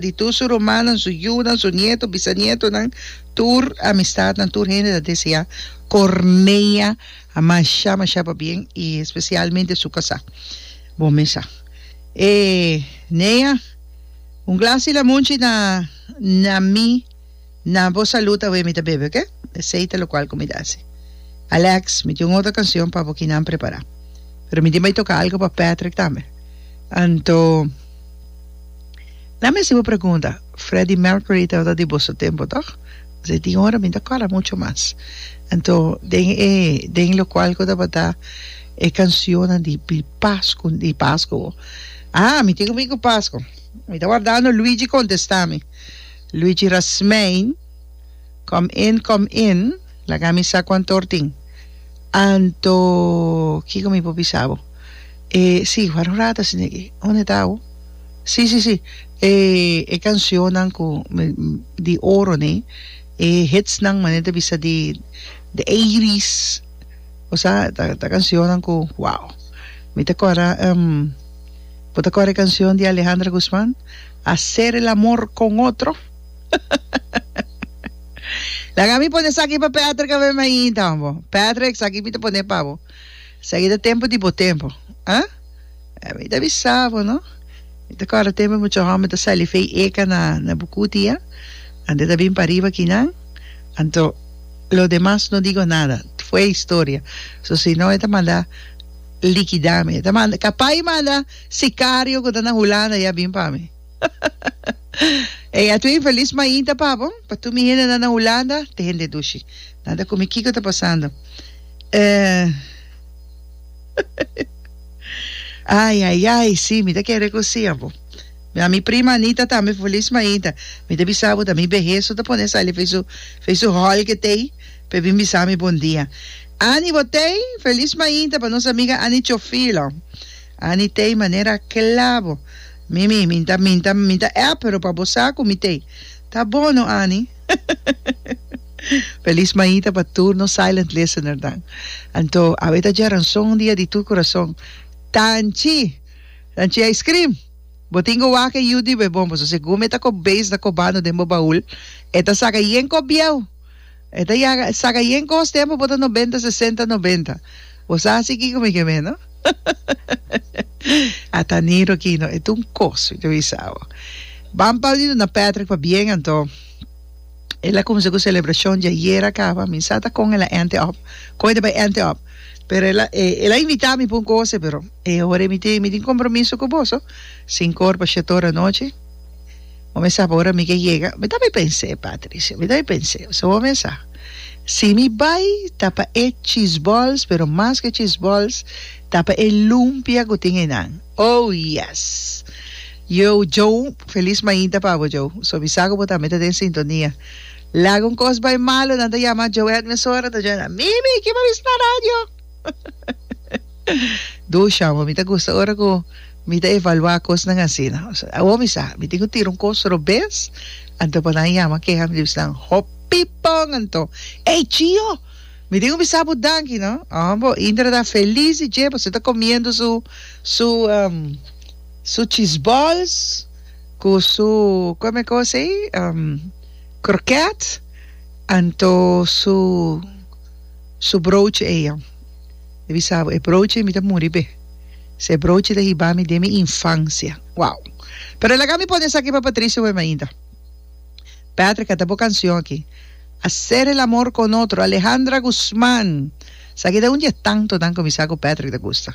Di tur su rumannan, su yunan, su nieto, bisanietunan, tur amistatnan, tur hende ta deseá Corneia mashá mashá pa bien i spesialmente su kasá. Bon mes sa. E Nea, un glasi lamunchi na na mi. Na bo salud awe mi ta bebe ok. Esey ta locual cu mi ta haci. Alex, mi tin un otro cancion pa bo kinan prepara. Pero mi tin bay toca algo pa Patrick tambe. Anto, lami haci bo pregunta, Freddie Mercury tabata di boso tempo toch? Pues e tin ora mi ta cora mucho mas. Anto, den e den locual cu tabata e cancionnan di di Pascu di Pascu. Ah, mi tin cu mi cu Pascu. Mi ta wardando Luigi contesta mi. Luigi Rasmein, Kom in, kom in, laga mi sa kuantor tin. Anto, Kiko mi por bisa bo? E, si, wak un rato asina aki. Unda ta awo? Si, si, si, e, e kanshonnan ku mi, di oro ne, e hitsnan manera ta bisa di, de eighties, bo sa, ta, ta kanshonnan ku, wow. Mi ta kòrda, bo ta kòrda e kanshon di Alejandra Guzman? Hacer el amor con otro? Laga mi pone esaki pa Patrick a ver mainta, hombo. Patrick, esaki mi ta pone pa bo. Esaki ta tempo di bo tempo. Huh? Eh, mi ta bisa bo, no? Mi ta corda tempo mucha homber ta sali fey eca na, na Bucuti, eh? Ante ta bin pariba akinan. Anto, lo demas no digo nada. Fue historia. So, si no e ta manda likida mi. E ta manda, capaz e manda. Sicario cu ta na Hulanda ya bin pa mi. Ey, a tu infeliz mainta pa bo, pa tur mi hendenan na Hulanda, te hende dushi. Nan ta cumi kico ta pasando. Eh, Ay, ay, ay, sí, mi ta ken recoci a bo. Mi a mi prima Anita tambe feliz mainta. Mi ta bisa bo ta mi behe su ta pone sali fei su, fei su hall que tei, pe bin bisa mi bon dia. Annie Botey, feliz mainta pa nos amiga Annie Chofilo. Annie tei manera kla bo. Mimi, mi ta mi ta mi ta app pero pa bo sa ku mi tei. Ta bon no Annie. Feliz maita pa tur nos silent listener nan. Anto awe ta dje ranson dia di tur kurason. Tanchi! Tanchi ice cream! Bo tin ku wak e yu di be bon paso segur mi e ta kop beis na kobando den bo baul e ta saka yen kop bieu. E ta yaga e saca yen cos tempo bo ta noventa sesenta noventa bo sa hasi kico mi ke meno a ta niro aki no e ta un cos mi ta bisa bo ban pa di duna Patrick pa bien anto el a cuminsa cu celebracion di ayer a caba mi sa ta con el a ente op con el ta bai ente op pero el a el a invita mi pa un cose pero e ora mi tin mi tin compromiso cu boso cinco ora pa shete ora anochi. Bo mesa bo ora mi ke yega? Mi ta bai pens'é, Patricia, mi ta bai pens'é. So bo mesa, si mi bai ta pa e chisbols, pero mas ke chisbols ta pa e lumpia ku tin einan. Oh, yes! Yo, Joe, felis mainta pa bo, Joe. So mi sa ku bo tambe ta den sintonia. Laga un kos bai malo, nan ta yama Joe Edmond Sora, nan ta djoe nan, Mimi, kiba bisa na radio? Dusha, amo mi ta gusta ora cu mi ta evaluá cosnan asina. Awor mi sa, mi tin cu tira un cos robes, anto panan yama keha mi di bisnan, hopi pon anto! Ey, Chio! Mi tin cu mi sa bo danki, no? Amo bo, Indra ta feliz di dje pasobra e ta comiendo su, su, su cheeseballs cu su, coma e cos ey? Croquet, anto su. Su brouchi ey an. Mi bisabo, e brouchi ey mi ta muri be. Si e brouchi ta hiba mi den mi infancia. Wow! Pero laga mi pone esaki pa Patricio wem ainda. Patrick, canta bo cancion aki. Hacer el amor con otro, Alejandra Guzman. Esaki ta un di e tantonan cu mi sa cu Patrick ta gusta.